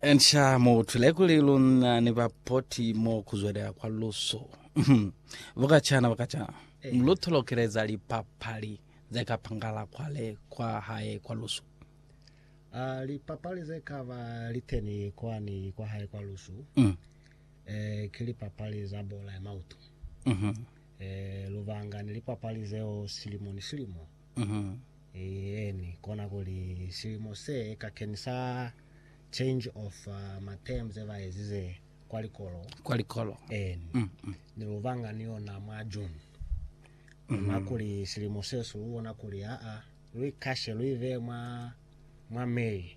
Nca mutwile kuli luna ni bapoti mo kuzwelela kwa lusu. Bukacana bukacana, lutolokeleza lipapali zekapangala kwale kwa hae kwa lusu. Ah, lipapali ze kaba liteni kwani kwa hae kwa lusu Mm. eh, ki lipapali za bola ya mauto Mhm. eh, lubanga ni lipapali zeo silimo ni silimo Eeni, kona kuli silimo se kakeni sa change of uh, ma term ze ba ezize kwa likolo kwa likolo eeni ni lubanga ni yona mwa June ona kuli silimo se su bona kuli aa lu ikashe lu ive mwa mwa May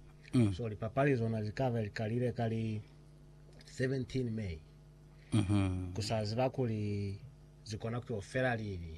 so lipapali zona zi ka be li kalile ka li 17 May ku sa ziba kuli zi kona ku yo fela lini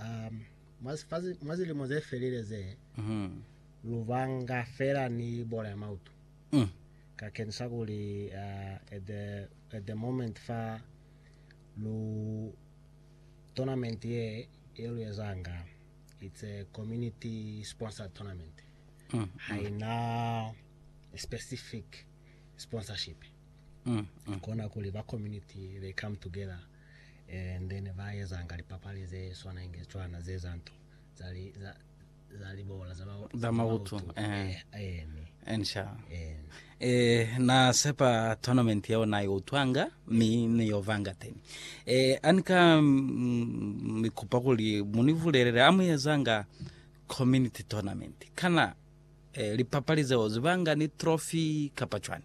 Um, mwa sifazi- mwa zilimo ze felile ze, Mhm. lu banga fela ni bola ya mautu. Mm. Ka kenisa kuli uh, at, the, at the moment fa lu tournament ye ye lu ezanga it's a community sponsored tournament Mm. haina specific sponsorship Mm. Mm. kona kuli ba community they come together and then ba ezanga lipapali ze swana inge tswana ze za nto za li za za libola za ba Za mautu, eh. eh ene Ensha. eh Eh, na sepa tournament yeo na yo utwanga mi ni yo vanga teni eh anika mm, mi kupa kuli muni vulelele amu ezanga community tournament kana eh, lipapali zeo zibanga ni trophy kapa chwani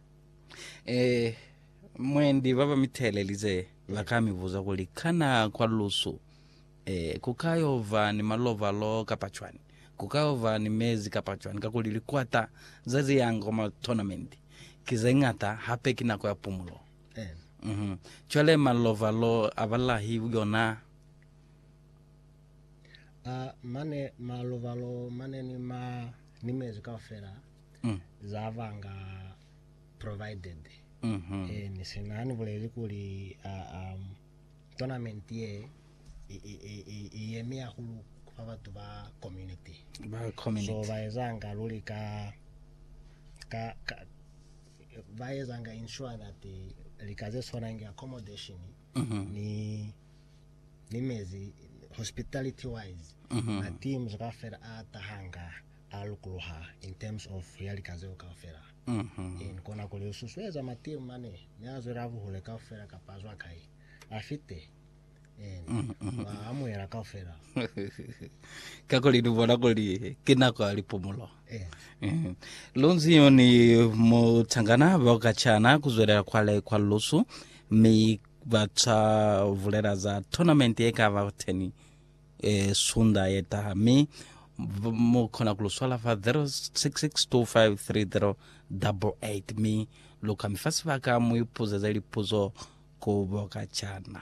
Eh, mwendi baba mitelelize bakamibuza kuli kana kwa lusu eh kukayova ni malovalo kapa cwani kukayova ni mezi kapa cwani kakuli likwata za ziyanga kwa matournament ki zeñata hape ki nako ya pumulo Eh. mhm cwale malovalo abalahi yona Ah, mane malovalo mane ni ma ni mezi kaufela mm. za ba nga provided mm -hmm. e, ni se na ni buleli kuli uh, um, tournament ye i yemi ya hulu fa batho ba community ba community so ba ezanga luli ka ka, ka ba ezanga ensure that lika ze tshwanang ke accommodation mm -hmm. ni ni mezi hospitality wise mm -hmm. na teams ka fela a tahanga a lukuluha in terms of ya lika zeo kaufela. In kona kuli u susueza Matiu mane mi a zwela buhule kaufela kapa a zwa kai, a fite, in wa amuhela kaufela. Kakuli ni bona kuli ki nako ya lipumulo. Eh. Lunzi yoni mu tangana bao ka chana ku zwelela kwale kwa lusu mi ba tsa vulela za tournament ye ka ba teni. e sunda ye taha mi mu kona ku lu swala fa 0662533088 mi lu ka mi fa sibaka mu ipuzeze lipuzo ku Bokacana.